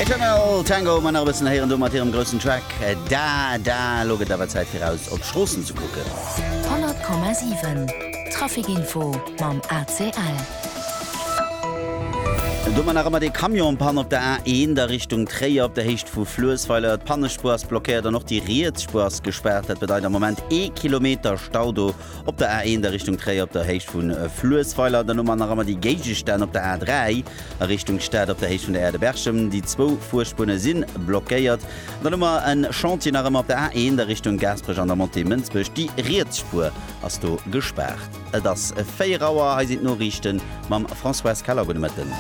Eternal Tango man nach e bëssen héieren do mat hirem groussen Track Da Da. Lo gëtt awer Zäit fir eraus op d'Stroossen ze kucken. 100,7 Traficinfo mam ACL. Domat nach ëmmer dee Camion Panne op der A1 a Richtung Tréier op der Héicht vu Fluessweiler. D'Pannespuer ass blockéiert an och déi riets Spuer ass gespaart. Dat bedeit am Moment ee Kilometer Stau do. Op der A1 a Richtung Tréier op der Héicht vu Fluessweiler an dann um Aneramer déi Géigestänn op der A3 a Richtung Stad op der Héicht vun der Aire de Berchem. Déi zwou Fuerspune si blockéiert. An dann hu mer e Chantier nach ëmmer op der A1 a Richtung Gaasperech an der Montée Mënsbech. Déi riets Spuer ass do gespaart. Et ass 4 Auer. Hei sinn d'Noriichte mam Françoise Keller. Gudde Mëtten.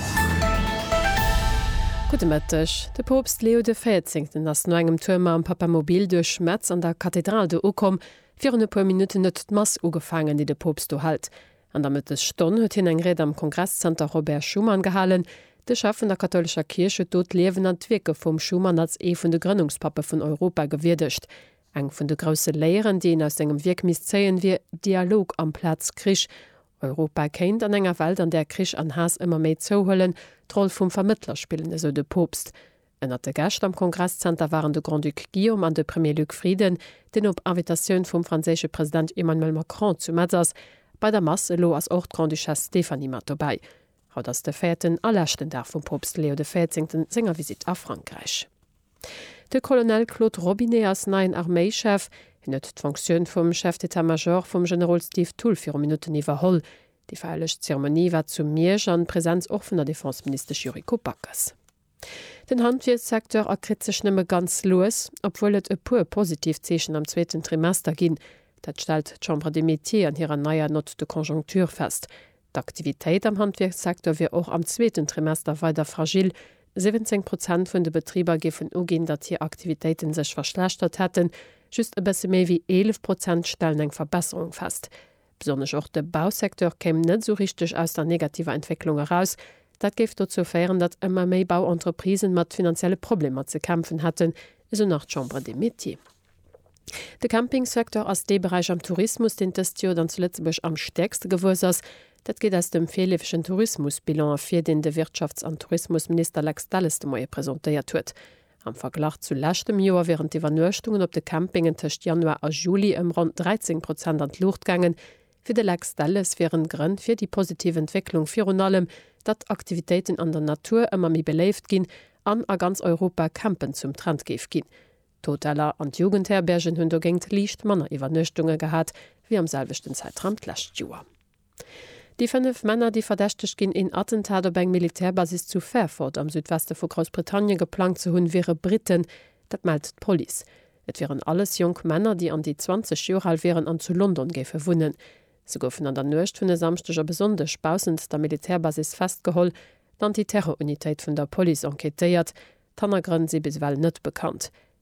Gudde Mëtteg. De Poopst Leo de Véierzéngten ass no engem Tour mam Papamobil duerch Metz an der Kathedral do ukomm. Virun e puer Minutten huet d'Mass ugefaangen, déi de Poopst do hält. An der Mëttesstonn huet hien eng Ried am Kongresszenter Robert Schuman gehalen. De Chef vun der kathoulescher Kierch huet do d'Liewen an d'Wierke vum Schuman als ee vun de Grënnungspappe vun Europa gewierdegt. Eng vun de grousse Léieren, déi een aus sengem Wierk misst zéien, wier Dialog amplaz Krich. Europa kéint, an enger Welt, an där Krich an Haass ëmmer méi zouhuelen, d'Roll vum Vermëttler spillen, esou de Poopst. Ënnert de Gäscht am Kongresszenter waren de Grand-Duc Guillaume an de Premier Luc Frieden, deen op Invitatioun vum franséische President Emmanuel Macron zu Metz ass, bei der Mass. Elo ass och d'Grande-Duchesse Stéphanie mat dobäi. Haut ass de véierten a leschten Dag vum Poopst Leo de Véierzéngten senger Visitt a Frankräich. De Colonel Claude Robinet ass neien Arméichef. Hien huet d'Fonctioun vum Chef d'État-Major vum Generol Steve Thull viru Minutten iwwerholl. Déi feierlech Zeremonie war zu Miersch an Presenz och vun der Defenseministesch Yuriko Backes. Den Handwierkssecteur erkritt sech nëmme ganz lues, obwuel et e puer positiv Zeechen am zweeten Trimester ginn. Dat stellt d'Chambre des Métiers an hirer neier Note de conjoncture fest. D'Aktivitéit am Handwierkssecteur wier och am zweeten Trimester weider fragil. 17 Prozent vun de Betriber géifen uginn, datt hir Aktivitéite sech verschlechtert hätten, just e bësse méi wéi 11 Prozent stellen eng Verbesserung fest. Besonnesch och de Bausecteur kéim net esou richteg aus der negativer Entwécklung eraus. Dat géif dozou féieren, datt ëmmer méi Bauentreprisen mat finanzielle Problemer ze kämpfen hätten, esou nach d'Chambre des Métiers. De Campingsecteur ass dee Beräich am Tourismus, deen dëst Joer dann zu Lëtzebuerg am stäerkste gewuess ass. Dat geet aus dem virleefegen Tourismusbilan ervir, deen de Wirtschafts an Tourismusminister Lex Delles de Moie presentéiert huet. Am Verglach zu leschtem Joer wieren d'Iwwernuechtungen op de Campingen tëscht Januar a Juli ëm ronn 13 Prozent an d'Luucht gaangen. Fir de Lex Delles wieren d'Grënn fir déi positiv Entwécklung virun allem, datt Aktivitéiten an der Natur ëmmer méi beléift ginn an a ganz Europa Campen zum Trend géif ginn. D'Hoteller an d'Jugendherbergen hunn dogéint liicht manner Iwwernuechtunge gehat wéi am selwechten Zäitraum d'lescht Joer. Déi fënnef Männer, déi verdächtegt ginn, een Attentat op eng Militärbasis zu Fairford am Südweste vu Groussbritannien geplangt ze hunn, wiere Britten. Dat mellt d'Police. Et wieren alles jonk Männer, déi an déi 20 Joer al wieren an zu London géife wunnen. Se goufen an der Nuecht vun e Samschdeg op e Sonndeg baussent der Militärbasis festgeholl. D'Anti-Terror-Unitéit vun der Police enquêtéiert. D'Hannergrënn si bis ewell net bekannt.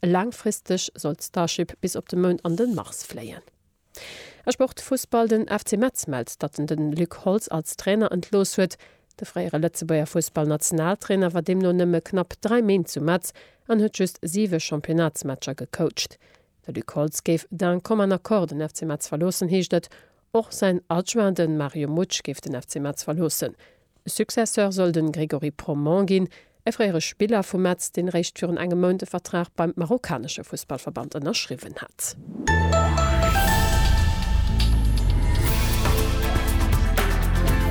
Laangfristeg soll d'Starship bis op de Mound an de Mars fléien. A Sportfussball, Den FC Metz mellt, datt en de Luc Holtz als Trainer entlooss huet. De fréiere Lëtzebuerger Fussballnationaltrainer war deemno nëmme knapp 3 Méint zu Metz an huet just 7 Championnatsmatcher gecoacht. De Luc Holtz géif d'un commun accord den FC Metz verloossen, heescht et. Och säin Adjoint, de Mario Mutsch, géif den FC Metz verloossen. E Successeur soll de Grégory Proment ginn, e fréiere Spiller vu Metz, deen eréischt virun engem Mount e Vertrag beim marokkanesche Fussballverband ënnerschriwwen hat.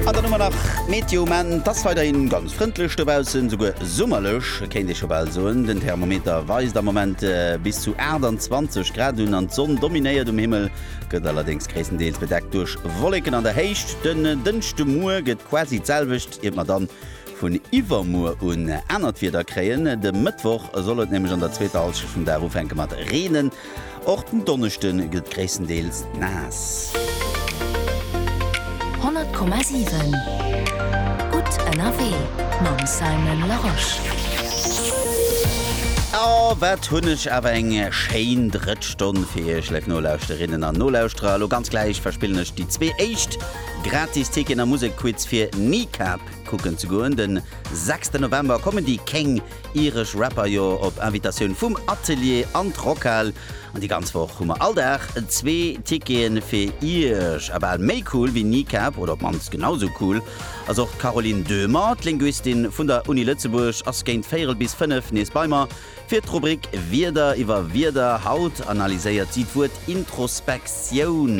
An dann hu mer nach d'Meteo. Maanten ass weiderhin ganz frëndlech dobaussen, souguer summerlech kéint ee scho bal soen. Den Thermometer weist am Moment bis zu 28 Grad un an d'Sonn dominéiert um Himmel. gëtt allerdéngs gréisstendeels bedeckt duerch Wolleken an der Héicht. Den Dënschdemuer gëtt quasi d'selwecht, iert mer dann vun iwwermuer un anert Wieder kréien. De Mëttwoch soll et nämlech an der zweeter Halschent vum Dag ufänke mat reenen. Och den Donneschde gëtt gréisstendeels naass. 100,7 gutt ënnerwee mam Simon Larosche. A wat hunn ech awer eng schéin Drëtsch! Stonn fir Iech, Leif Nolauschterinnen an Nolauschterer. Elo ganz gläich verspillen ech déi zwee éischt gratis Ticketen am Musekquiz fir Kneecap kucken ze goen. De 6 de November kommen déi King Irish Rapper jo op Invitatioun vum Atelier an d'Rockhal. An déi ganz Woch hu mer all Dag zwee Ticketen fir Iech. A bal méi cool wéi Kneecap, oder op d'mannst genau esou cool, ass och d'Caroline Döhmer. D'Linguistin vun der Uni Lëtzebuerg ass géint véierel bis fënnef nees bei mer. Fir d'Rubrik Wierder iwwer Wierder haut analyséiert si d'Wuert Introspektioun.